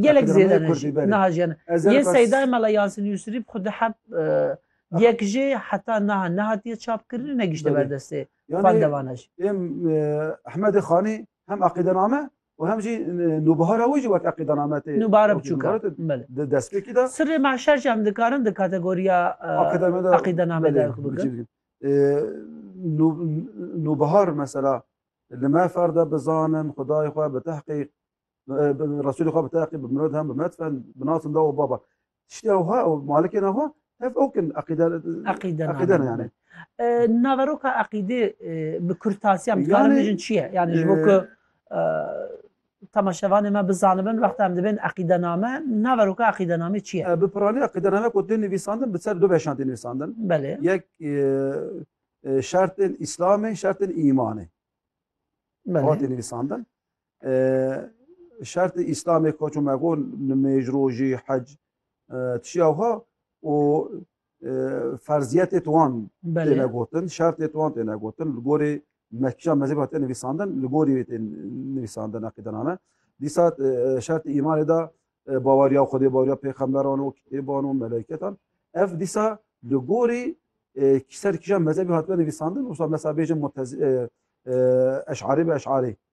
Gelek zêde ne jî niha jî ne. Yên Seydayê Mela Yasin Yusrî bi xwe diheb yek jê heta niha nehatiye çapkirin û negişte ber destê xwendevanan jî. Êm Ehmedê Xanî hem eqîdename û hem jî nûbihara wî jî wek eqîdename tê. Nûbihara biçûk e. Di destpêkî de. Sirrê mahşer jî em dikarin di kategoriya eqîdename de bigirin. Nûbihar mesela li me fer de bizanin xwedayê xwe bi tehqîq Resulê xwe bi teqî bi mirod hem bi metfen bi nasin da û baba. Tiştê ewha û malikên ewha hev ew kin eqîde eqîde ne yani. Naveroka eqîdê bi kurtasiya dikarim bijin çi ye? Yani ji bo ku temaşevanê me bizanibin wexta em dibên eqîdename naveroka eqîdenamê çi ye? Bi piranî eqîdename ku tên nivîsandin bi ser du beşan tên nivîsandin. Belê. Yek şertên îslamê, şertên îmanê. Belê. Hatê nivîsandin. Şertê Îslamê ka ço me got nimêj, rojî, hec tişî ewha û ferziyetê tu wan têne gotin, şertê tu wan têne gotin li gorî mekîja mezheba tê nivîsandin, li gorî wê tê nivîsandin eqîdename. Dîsa şertê îmanê de baweriya Xwedê, baweriya pêxemberan û kitêban û meleketan. Ev dîsa li gorî kîser kîjan mezhebî hatibin nivîsandin, wisa mesela bêjin eşarî bi eşarî.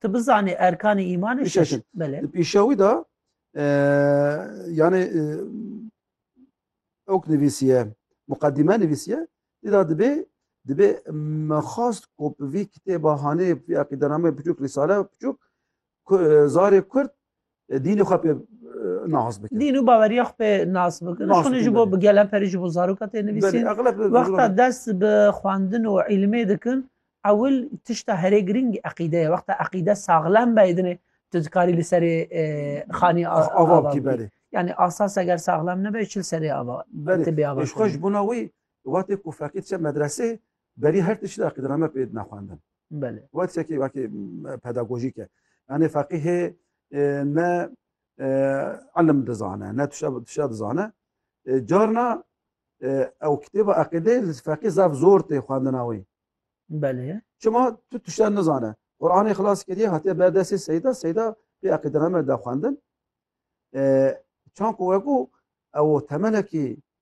Tu bizanî erkanê îmanê şeş in. Belê. Di pîşewî de e, yani e, ok nivîsiye, muqedîme nivîsiye, dî da dibê dibê me xast ku bi vî kitêba hanê vî eqîdenameyê biçûk, rîsale biçûk, ku- e, zarê Kurd Dînê xwe pê nas bikin. Dîn û baweriya xwe pê nas bikin. Nas Şonê ji bikin, bo belê. bi geleperî ji bo zaroka tê Belê, nivîsîn. egleb bi Wexta zirokan. dest bi xwendin û îlmê dikin, ewil tişta herê girîng eqîde ye. Wexta eqîde saxlem be dinê tu dikarî li serê e, xanî a- Ava ava bikî bikî. belê. Yanî asas eger saxlem nebe çi li serê ava Belê. tibê ava Ji xwe ji kiriye. bona wî wextê ku feqî diçe medresê Berî her tiştî de aqîdname pê dina xwendin. Belê. Wa tiştekî wekî pedagojîk e. Yanê feqîhê ne ilim dizane, ne tişa tişa dizane. Carna ew kitêba aqîdê li feqî zaf zor tê xwendina wî. Belê. Çima tu tişa nizane. Quranê xilas kiriye hatiye ber destê seyda, seyda pê aqîdname da xwendin. Çanku wekû ew temelekî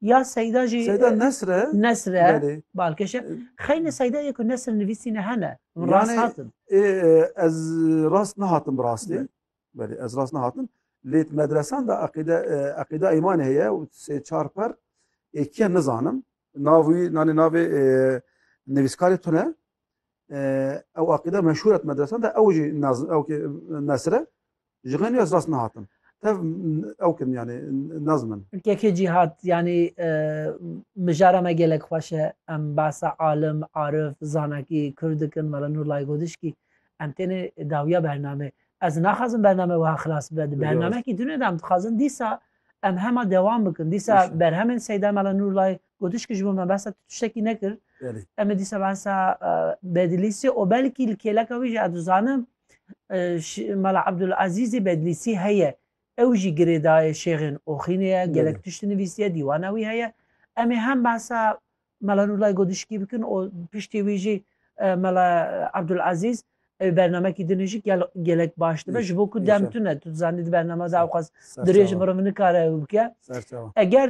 Ya Seyda jî Seyda Nesr e? Nesr e. Belê. Balkêş e. Xeynê Seyda yê ku Nesr nivîsîne hene. Min Yani- rast hatin. Ê, e, ez rast nehatim bi rastî. Belê. Belê ez rast nehatim. Lê di medresan de eqîde e, eqîda îmanê heye û sê çar per ê kiye nizanim. Nav wî nanê navê e, nivîskarê tune. E, ew eqîda meşhûr e di medresan de ew jî naz ew ki Nesr e. Ji xênî ez rast nehatim. Tev ew kirin yani naz min. Kekê Cîhat yani e, mijara me gelek xweş e. Em behsa alim, arif, zanakî, kurd dikin, Mela Nur Laygodiskî. Em têne dawiya bername. Ez naxwazim bername wiha xilas bibe. Di bernamekî tune de em dixwazin dîsa em hema dewam bikin. Dîsa berhemên Seyda Mela Nur Lay Godiskî ji bo me behsa tiştekî nekir. Em ê dîsa behsa e, bedilîsê û belkî li kêleka wî jî ez dizanim Mala Abdulazîzê Bedlîsî heye ew jî girêdayê şêxên Oxînê ye, gelek tişt nivîsiye, dîwana wî heye. Em ê hem behsa Mala Nûrlay Godişkî bikin û piştî wî jî Mala Abdulazîz ew bernamekî din jî gelek baş dibe ji bo ku dem tune tu dizanî di bernama de ewqas dirêj mirov nikare ew bike. Eger